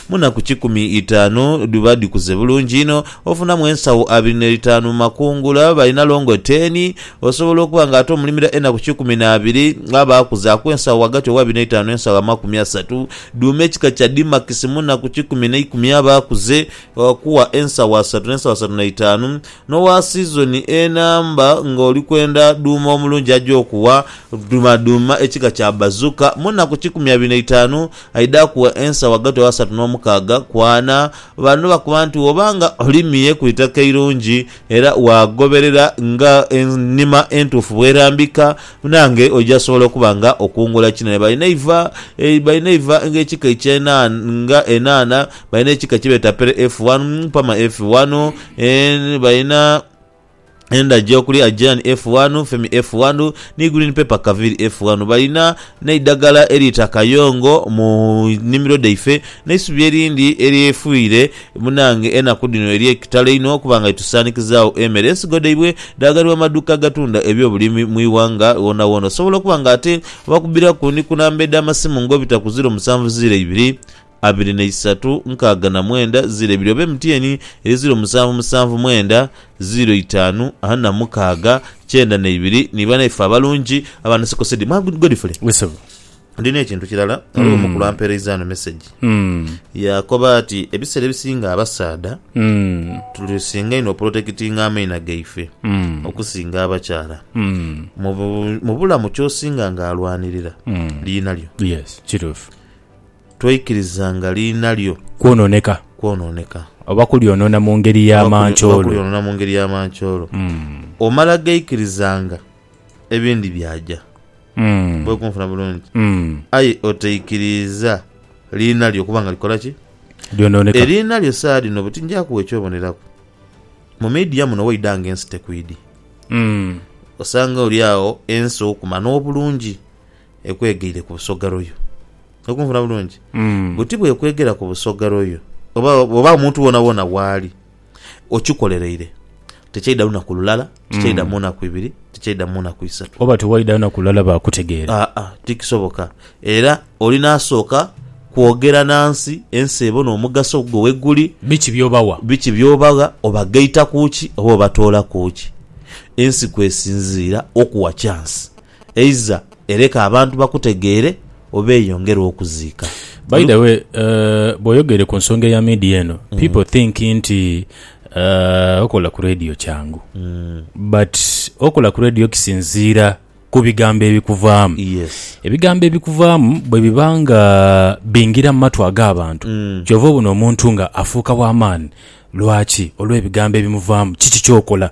Mu naku kikumi itaanu dhiba dhikuze bulungi inho, ofunamu ensagho abiri ne itaanu mu makungula, balina longo teeni. Osobola okuba nga ate omulimira enaku kikumi na abiri, aba akuzaaku ensagho ghagati ow'abiri ne itaanu n'ensagho amakumi asatu. Dhuuma ekika kya dimakisi mu naku kikumi ne ikumi aba akuze, okuwa ensagho asatu n'ensagho asatu na itaanu. N'owa sizoni enamba nga oli kwenda dhuuma omulungi aja okuwa. Dhuuma ekika kya bazuka mu naku kikumi abiri na itaanu. Aidha akuwa ensa ghagati w'asatu n'omukaaga ku ana. Bano bakoba nti woba nga olimye ku itaka eirungi era waagoberera nga enima entuufu bw'erambika, naange oija sobola okuba nga okungula kinene. Balina eiva balina eiva ng'ekika eky'enhaanha nga enhaanha, balina ekika kye beeta Pere F1, Pama F1, balina. Endhagi okuli Aegean F1, Femi F1 ni Green Pepper Kaviri F1. Balina n'eidhagala eriita kayongo mu nnhimiro dhaife n'eisubi erindi eryefuire munange enaku dhino ery'ekitalo einho okuba nga litusanikizaawo emere. Ensigo dhaibwe dhaaganibwa mu maduuka agatunda ebyobulimi mu ighanga woonawoona. Osobola okuba nga ate obakubbiraku ni ku namba edh'amasimu ng'obita ku ziro musanvu ziro ibiri, abiri na isatu nkaaga na mwenda ziiro ebiri oba MTN eri ziiro musanvu musanvu mwenda ziiro itaanu ana na mukaaga kyenda na ibiri ni banaife abalungi aba Nsiko Cedi. Mwa Godfrey. Yes sebo. Ndina ekintu kirala, ghaligho omukulu ampereiza ghano message Mm. yaakoba ati ebiseera ebisinga abasaadha Mm. tusinga inho oprotekitinga amaina gaife Mm. okusinga abakyala Mm. mu bu- mu bulamu kyosinga nga alwanirira Mm. liina lyo. Yes, kituufu. Twaikiriza nga liina lyo. Kwonooneka. Kwonooneka. Oba kulyonoona mu ngeri ya mancoolo. Oba kulyonoona mu ngeri ya mancoolo. Omala gaikiriza nga ebindi byaja. Bwoli kunfuna bulungi. Aye otaikiriiza liina lyo okuba nga likola ki? Lyonooneka. Eriina lyo saagha dhino buti nja kugha ekyoboneraku. Mu media muno waidha nga ensi tekwidhi. Osanga oli agho ensi okuma n'obulungi ekwegaire ku busoga royo. Oli kunfuna bulungi? Buti bwekwegera ku busoga royo oba, oba omuntu wonawona waali, okikolereire, tikyaidha lunaku lulala, tikyaidha mu naku ibiri, tikyaidha mu naku isatu. Oba tewaidha lunaku lulala baakutegeera. Aa, tikisoboka. Era olina asooka kwogera na nsi, ensi ebone omugaso gwo weguli, Biki by'obawa? biki by'obagha, obagaita ku ki oba obatoolaku ki. Ensi kw'esinziira okuwa kyansi. eiza ereka abantu bakutegeere oba eyongere okuziika. By the way bwoyogeire ku nsonga eya media eno people think nti okola ku radio kyangu but okola ku radio kisinziira ku bigambo ebikuvaamu. Ebigambo ebikuvaamu bwe biba nga bingira mu matu ag'abantu kyova obona omuntu nga afuuka wa maani. Lwaki? Olw'ebigambo ebimuvaamu. Kiki ky'okola?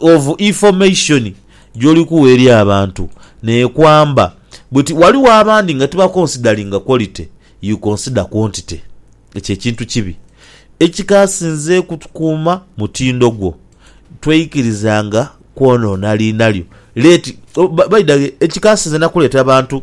of information gyoli kuwa eri abantu nekwamba bweti waliwo abandi nga tiba consideringa quality you consider quantity ekyo ekintu kibi ekikasinze kutukuuma mutindo gwo tweikirizanga kwonona liina lyo let baidhaghe ekikasinze nakuleeta bantu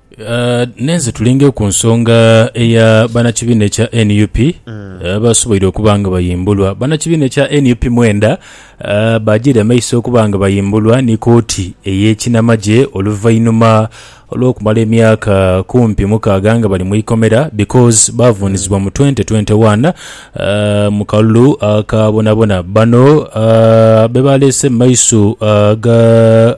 Nenze tulinge ku nsonga eya banakibiina ekya nup abasoboire okuba nga bayimbulwa. Banakibiina ekya nup mwenda bajere amaiso okuba nga bayimbulwa ni kooti eyekinamagye oluvainhuma olwokumala emyaka kumpi mukaaga nga bali mwikomera because bavunizibwa mu twente twente wani mu kalulu akabonabona. Bano bebaleese mu maiso ga.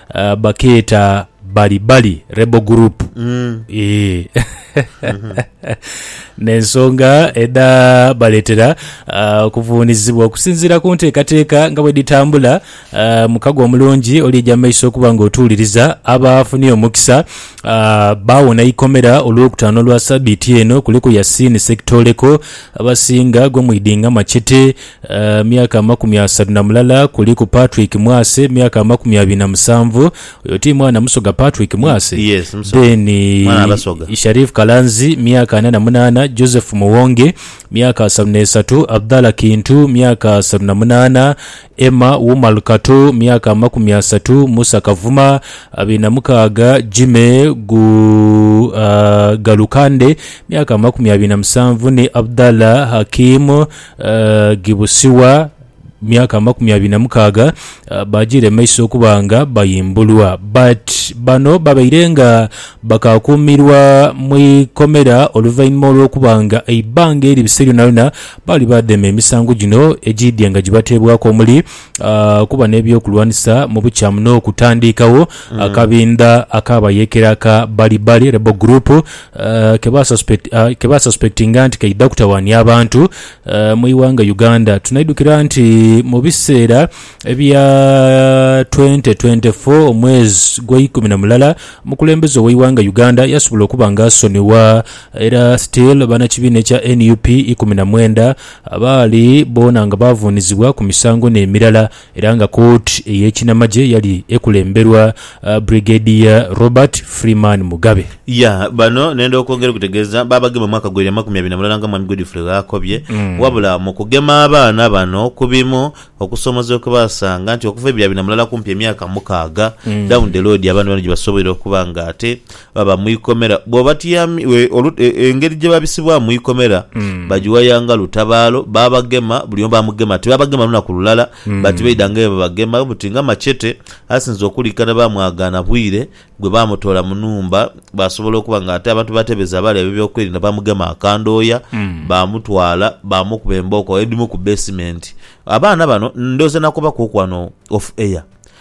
Ah, bakeeta Bali Bali Rebel Group. Eeh. N'ensonga edhaabaleetera ah, okuvuunizibwa okusinziira ku nteekateeka nga bwedhitambula ah, mukago omulungi olija mu maiso okuba ng'otuuliriza abaafunye omukisa ah, baawona eikomera Olwokutaano lwa sabiiti eno kuliku Yasin Ssekitooleko, abasinga gwe mwidinga machete, Myaka amakumi asatu na mulala kuliku Patrick Mwase myaka amakumi abiri na musanvu oyo ti mwana Musoga Patrick Mwase? Yes, Musoga. Then Mwana wa Basoga. Sharif Kalanzi myaka ana na munaana Joseph Muwonge myaka asatu n'esatu Abdallah Kintu myaka asatu na munaana Emma Umar Kato myaka amakumi asatu Musa Kavuma abiri na mukaaga Jimmy Gu, ah, Galukande myaka amakumi abiri na musanvu ni Abdallah Hakim Gibusiwa myaka amakumi abiri na mukaaga baajiira emaiso okuba nga bayimbulwa. But bano babaire nga bakaakuumirwa mu ikomera oluvainhuma olw'okuba nga eibbanga eri bise lyonayona baali baadheema emisango gino egiidhye nga gibateebwaku omuli, ah, okuba n'eby'okulwanisa mu bukyamu n'okutandiikagho akabindha ak'abayeekera aka Balibali Rebel Group ah, ke basuspect- ah, ke basuspectinga nti kaidha kutawaania abantu ah, mu ighanga Uganda. Tunaidhukira nti mu biseera ebya 2024 omwezi gw'eikumi na mulala omukulembeze ow'eighanga Uganda yasobola okuba nga asonibwa era still banakibiina ekya nup ikumi na mwenda Abaali boona nga baavuunizibwa ku misango n'emirala era nga kooti ey'ekinamagye yali ekulemberwa Brigadier Robert Freeman Mugabe. Ya bano nenda okwongera okutegeeza baabagema omwaka gweibiri amakumi abiri na mulala nga Mwami Godfrey bw'akobye wabula mu kugema abaana bano ku bimu okusoomoozebwa kwe baasanga nti okuva ebiri abiri na mulala kumpi emyaka mukaaga down the road abaana bano gye basoboire okuba ng'ate Baba mu ikomera. Bw'obatyamye, engeri gye babisibwamu mu ikomera, bagiwayanga lutabaalo, baabagema, buli omu baamugema. Tibaabagema lunaku lulala, bati baidhanga eyo babagema buti nga machete. Asinze okuliikana baamwagaana bwire gwe baamutoola mu nhumba, bw'asobola okuba nga ate abantu b'atebeza abaali ab'ebyokwerinda baamugema akandhooya, baamutwala baamukuba embooko edhimu ku beesimenti. Abaana bano ndhooza nakobaku oku wano off air,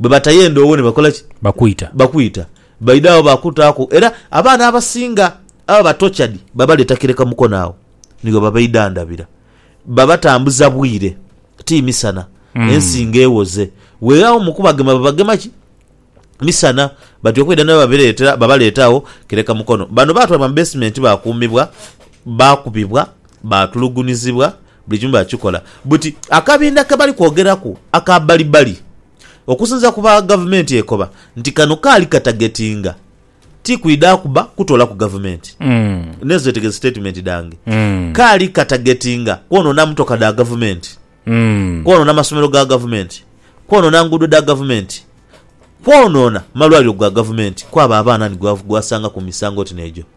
bwe batayenda owo ni bakola ki? Bakwita. Bakwita. Baidha agho baakutaaku. Era abaana abasinga ababa ba tortured babaleeta kireka Mukono agho ni ghe babaidhandhabira. Babatambuza bwire, ti misana. Ensi nga ewoze. Weeghawo mu kubagema babagema ki? Misana. Batyo okwidha ni babireetera, babaleeta agho kireka Mukono. Bano baatwalibwa mu basement baakuumibwa, baakubibwa, baatulugunyizibwa, Buli kimu bakikola buti. Akabinda ke bali kwogeraku aka Balibali, okusinziira ku ba Gavumenti ekoba nti kano kaali katagetinga, ti kwidha kuba kutoolaku Gavumenti. N'ezo zetegeze sitatimenti dhange. Kaali katagetinga kwonoona mmotoka dha Gavumenti, kwonoona masomero ga Gavumenti, kwonoona nguudo dha Gavumenti, kwonoona malwaliro ga Gavumenti kwabo abaana ni gwe wasanga ku misango oti n'egyo.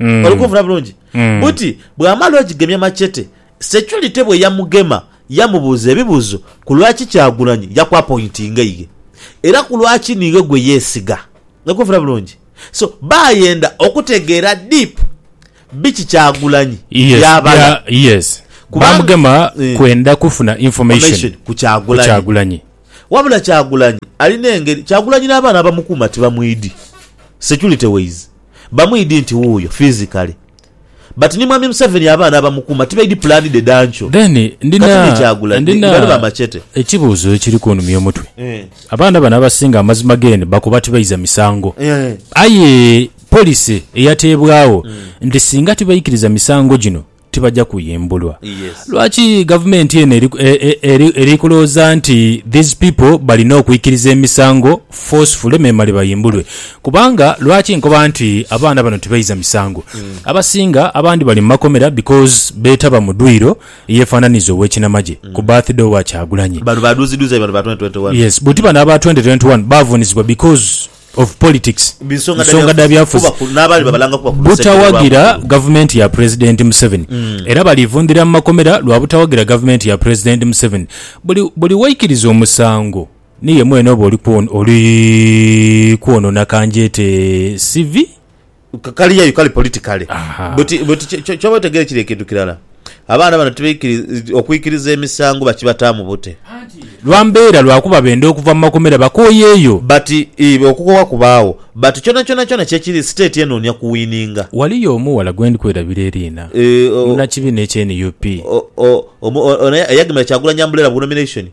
Mm. oli kunfuna bulungi Mm. buti bw'amala ogigemya machete securite bwe yamugema yamubuuza ebibuuzo ku lwaki Kyagulanyi yakwapointinga iye era ku lwaki niiwe gwe yeesiga oli kunfuna bulungi so baayenda okutegeera deep biki Kyagulanyi Yes, by'abala bya- yes. Kubanga- bamugema Eh. kwenda kufuna information Information ku ku Kyagulanyi. Kyagulanyi. wabula Kyagulanyi alina engeri Kyagulanyi n'abaana abamukuuma tibamwidi security ways Bamwidi nti wuuyo physically but ni mwami museveni abaana abamukuuma tibaidi plan dhe dankyo. Then ndina ndina ekibuuzo ekiri kunumya omutwe. Abaana bano abasinga amazima gen bakoba tibaiza misango aye policy eyateebwaawo nti singa tibaikiriza misango gino tibaja kuyimbulwa. Lwaki gavumenti eno eri kulowooza nti these people balina okwikiriza emisango forcefully memale bayimbulwe? Kubanga lwaki nkoba nti abaana bano tibaiza misango? Abasinga abandi bali mu makomera because betaba mu dwiiro eyefananiza owekinamagye ku birthday owa Kyagulanyi. Yes, buti bano aba twenty twenty one bavunizibwa because. of Politics Bi nsonga dha nsonga dha byafuzi byafuzi kuba ku- n'abaali babalanga kuba ku lusegere butawagira lwa Mukulu. gavumenti ya Pulezidenti Museveni era balivundhira mu makomera lwa butawagira gavumenti ya Pulezidenti Museveni. Buli buli waikiriza omusango ni ye mwene oba oli kwon- oli kwonoona kangyete CV. Kali yayu kali politikale. Buti, buti kyoba otegeere kiri ekintu kirala. Abaana bano tibaikiriza, okwikiriza emisango bakibataamu bute? Lwa mbeera, lwakuba benda okuva mu makomera bakooyeeyo. But, ii, okukoowa kubaagho. But kyonakyona kyona kyekiri, state enoonia kuwininga. Waliyo omughala gwendi kwerabira eriina, munakibina ekya nup. O, o, o, omu, ono eyagemera Kyagulanyi umbrella ku nomination.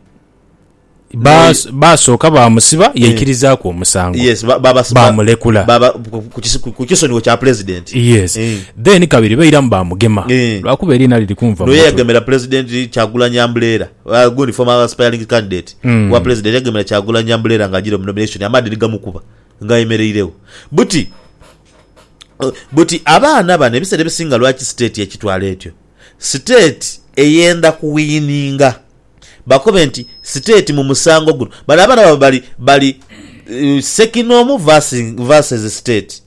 Ba- Naye- basooka bamusiba yaikirizaku omusango yes ba- babas- ba- bamulekula baba- ku- ku- kisi- ku- ku kisonyiwo kya pulezidenti yes Eh. then kabiri bairamu bamugema Eh. lwakuba eriina liri kunva noyo mumutwe. yagemera pulezidenti kyagulanyi ambuleera Ah, gundi former aspiring candidate Mm. wa pulezidenti yagemera kyagulanyi ambuleera nga agira omunomination amaadhi nigamukuba nga ayemereiregho buti eh, buti abaana bano ebiseera ebisinga lwaki state ekitwala etyo state eyenda kuwiyininga Bakobe nti, State mu musango guno. Bano abaana baabwe bali, bali Ssekinoomu verse, verses State.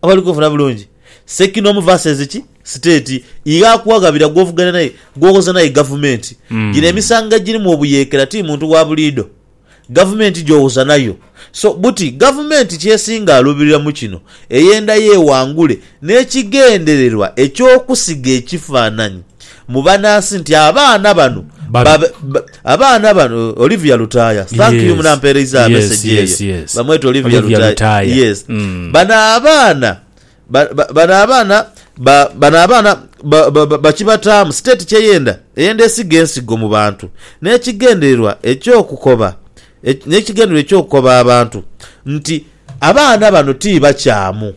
Oba oli kunfuna bulungi? Ssekinoomu verses ki? State. Ighe akughaghabira gw'ovuganya naye, gw'owoza naye gavumenti. Gino emisango egirimu obuyeekera ti muntu wa buliidho. Gavumenti gyowoza nayo. So buti gavumenti kyesinga alubirira mu kino eyenda yewangule n'ekigendererwa eky'okusiga ekifaananyi mu banansi nti abaana bano babe abaana bano Olivia Lutaaya thank you munampeereiza message eyo bamweta Olivia Lutaaya yes bano abaana Ba, ba, bano abaana ba, bano abaana ba, ba, ba, bakibataamu state kyeyenda, eyenda esiga ensigo mu bantu n'ekigendererwa eky'okukoba ek, n'ekigendererwa eky'okukoba abantu nti abaana bano ti bakyamu,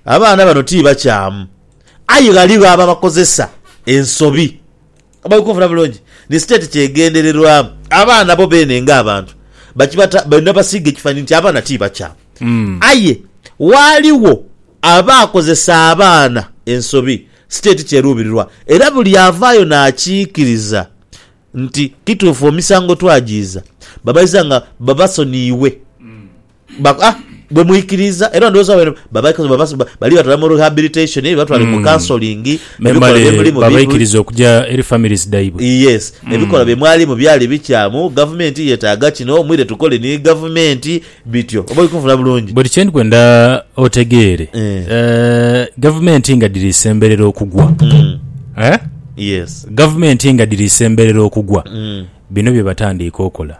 abaana bano ti bakyamu, aye ghaligho ababakozesa ensobi. Oba oli kunfuna bulungi? Ni state kye egendererwamu. Abaana bo beene nga abantu bakibata balina basiiga ekifanhanhi nti abaana ti bakyamu. Aye ghaligho abaakozesa abaana ensobi. State kye eruubirirwa era buli avaayo n'akiikiriza nti kituufu emisango twagiiza, bamaliza nga babasoniiwe. Baku, ah, bwe mwikiriza era ndowooza wabere babaikoze babas- ba- bali batwala mu rehabilitation eh, batwale mu counseling ebikolwa memale byemulimu bibi babaikiriza okuja eri families dhaibwe yes ebikolwa bye mwalimu byali bikyamu gavumenti yetaaga kino mwire tukole ni gavumenti bityo oba oli kunfuna bulungi buli kyendikwenda otegeere Eh. eh, gavumenti nga dhiri isemberera okugwa Mm, Eh? yes gavumenti nga dhiri isemberera okugwa Mm. bino bye batandiika okola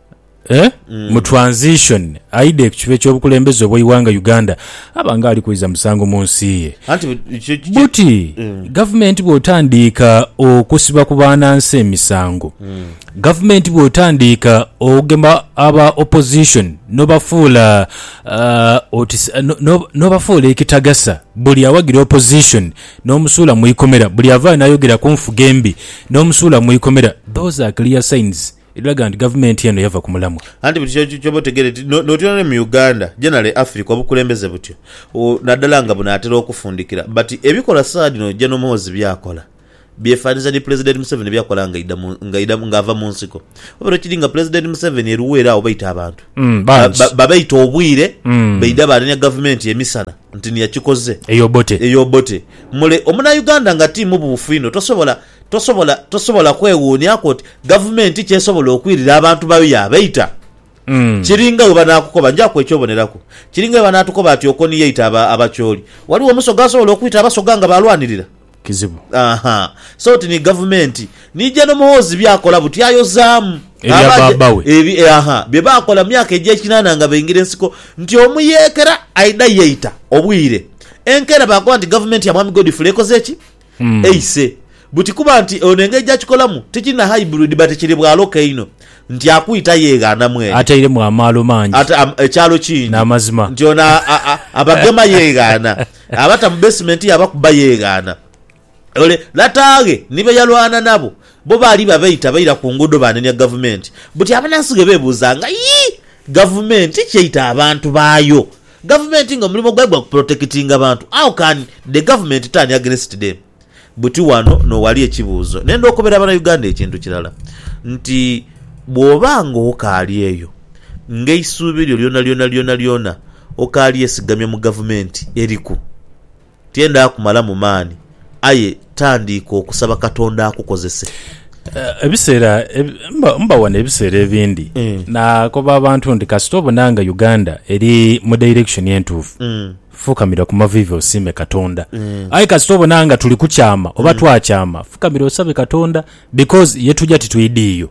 eh? mm. mu transition aide ku kiba ekyobukulembeze obweiwanga uganda aba nga ali kwiza musango mu nsi ye buti mm. gavumenti bwotandiika okusiba ku baanansi emisango mm. gavumenti bwotandiika okugema aba opposition nobafuula uh, nobafuula ekitagasa buli awagira opposition nomusuula mu ikomera buli avaayo nayogera ku nfuga embi nomusuula mu ikomera those are clear signs Edhiraga nti gavumenti eno yava ku mulamwa. Anti buli kiro kyooba otegeere nti notyona ni mu Uganda generally Africa obukulembeze butyo nadala nga bunatera okufundikira but ebikola saadhino Gen Muhoozi byakola byefananiza ni Pulezidenti Museveni byakola nga aidha nga ava mu nsiko wabera okiri nga Pulezidenti Museveni e Luweero agho baita abantu babaita obwire baidha banenya gavumenti emisana nti niyo yakikoze eyo Obote mule omunauganda nga ti mubuufu inho tosobola Tosobola tosobola kwewuunyaku oti Gavumenti ki esobola okwirira abantu bayo yaabaita? Kiringa bwe banaakukoba, njaku eky'oboneraku, kiringa bwe banaatukoba ati Okoni yaita aba, Abachooli. Waliwo Omusoga asobola okwita Abasoga nga baalwanirira? Kizibu. Aha. So oti ni Gavumenti. Ni Jeno Muhoozi by'akola buti ayozaamu. Ebya Aba aja, baaba we. ebi, e, aha, bye baakola mu myaka egy'ekinaana nga baingira ensiko, nti omuyeekera aidha yeita obwire. Enkeera baakoba nti Gavumenti ya Mwami Godfrey ekoze ki? Ace buti kuba nti ono engeri gyakikolamu tikiri na hybrid but kiri bwaloka einho nti akwita yeghana mwene. Atairemu amaalo mangi ekyalo kingi nti ono abagema yeghana, abata mu basement ye abakuba yeghana. Ole lataaghe ni be yalwana nabo bo baali babaita baira ku nguudo banenya gavumenti buti abanansi ghe bebuuza nga yii gavumenti ki eita abantu baayo Gavumenti nga omulimo gwayo gwa ku protectinga bantu how can the government turn against them? Buti wano nowali ekibuuzo nenda okobera abana Uganda ekintu kirala nti bwoba nga okaali eyo nga eisuubi lyo lyona lyona lyona lyona okaali esigamye mu gavumenti eriku, Tiyenda kumalamu maani, aye tandiika okusaba Katonda akukozese. Ebiseera mba wano ebiseera ebindi nakoba abantu nti kasita obona nga Uganda eri mu direction entuufu, fukamira ku maviivi osiime Katonda. Aye kasita obona nga tuli kukyama oba twakyama, fukamira osabe Katonda because ye tuja titwidhiiyo.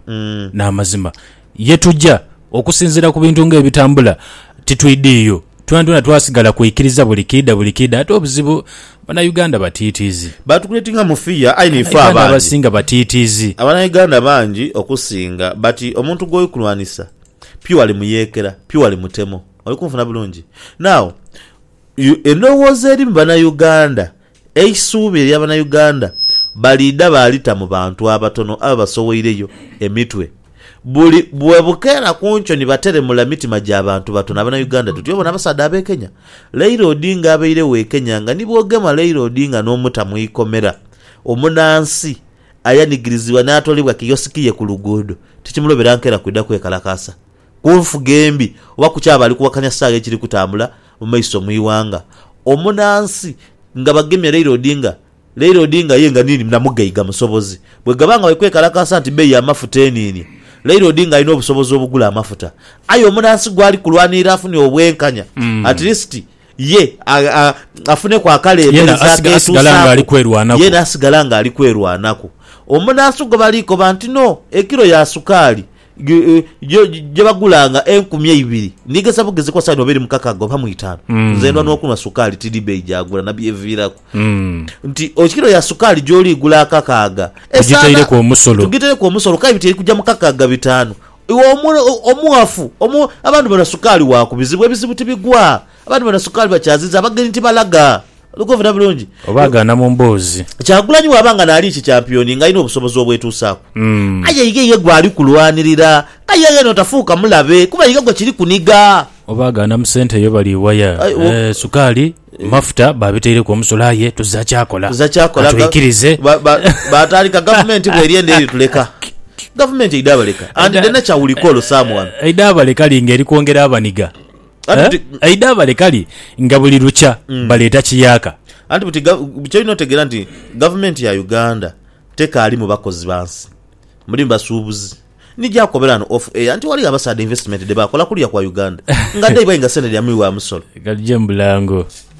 Namazima. Ye tuja, okusinziira ku bintu ng'ebitambula, titwidhiiyo. Twonatwona twasigala kwikiriza buli kiidha buli kiidha. Ate obuzibu, Banauganda batiitiizi. Baatukuletinga mu fiya aye n'ife Banauganda abandi. abasinga batiitiizi. Abanauganda bangi okusinga bati omuntu gw'oli kulwanisa pure ali muyeekera, pure ali mutemo. Oli kunfuna bulungi? Now, endhowooza eri mu Banauganda Eisuubi erya Banauganda baliidha baalita mu bantu abatono ababasoweireyo emitwe. Buli bwebukeera ku nkyo ni bateremula mitima gya bantu batono Abanauganda tuti obona abasaadha ab'e Kenya. Leila Odinga abairegho e Kenya nga ni bwogema Leila Odinga n'omuta mu ikomera, omunansi ayanigirizibwa n'atoolebwa kiyosiki ye ku luguudo, tikimulobera nkera kwidha kwekalakaasa. ku nfuga embi oba ku kyaba ali kuwakanya saagha ekiri kutambula mu maiso mu ighanga. Omunansi nga bagemye Raila Odinga, Raila Odinga ye nga niini na mugaiga musobozi. Bwegaba nga bali kwekalakaasa nti beeyi y'amafuta eniini, Raila Odinga alina obusobozi obugula amafuta. Aye omunansi gwali kulwanirira afunye obwenkanya at least ye afuneku akalembereza akeetuusaaku, yeena asigala nga ali kwerwanaku. Omunansi gwe bali koba nti no, ekilo ya sukaali. gye bagulanga enkumi eibiri, ndigeza bugezi kwa saidi oba eri mukakaaga oba mu itaanu. Mm. Nze ndwa n'okunwa sukaali, tidhi beeyi gyagula na byeviiraku. Mm. Nti o kilo ya sukaali gy'oli igula akakaaga. Tugitaireku omusolo. Tugitaireku omusolo k'aye biti eri kugya mu kakaaga bitaanu. Iwe omughafu, abantu banwa sukaali wa ku bizibu, ebizibu tibigwa. Abantu banwa sukaali bakyaziza, abagenyi tibalaga. Oli kwefuna bulungi? Oba agaana mu mboozi. Kyagulanyi bw'aba nga naali ki kyampiyoni ng'alina obusobozi obwetuusaaku. Aye iga iye gw'ali kulwanirira. Aye iga yenho tafuuka mulabe kuba iga gwe kiri kuniga. Oba agaana mu sente yo bali waya. Sukaali, mafuta baabitaireku omusolo aye tuzira kyakola. Katwikirize. Baatandika gavumenti bw'eri endha erituleka. Gavumenti eidha baleka and dene ca will call someone. Eidha baleka li ng'eri kwongera abaniga. Anti Eh? buti- eidaabale kali nga buli lukya Mm. baleeta kiyaaka anti buti ga- kyolina otegeera nti gavumenti ya uganda tekaali mu bakozi bansi muli mu basuubuzi nijakobera no off air nti waliyo abasaadha investment dhebakola kulya kwa uganda nga daibainga sente dya muwi wa musolo kali gye mbulango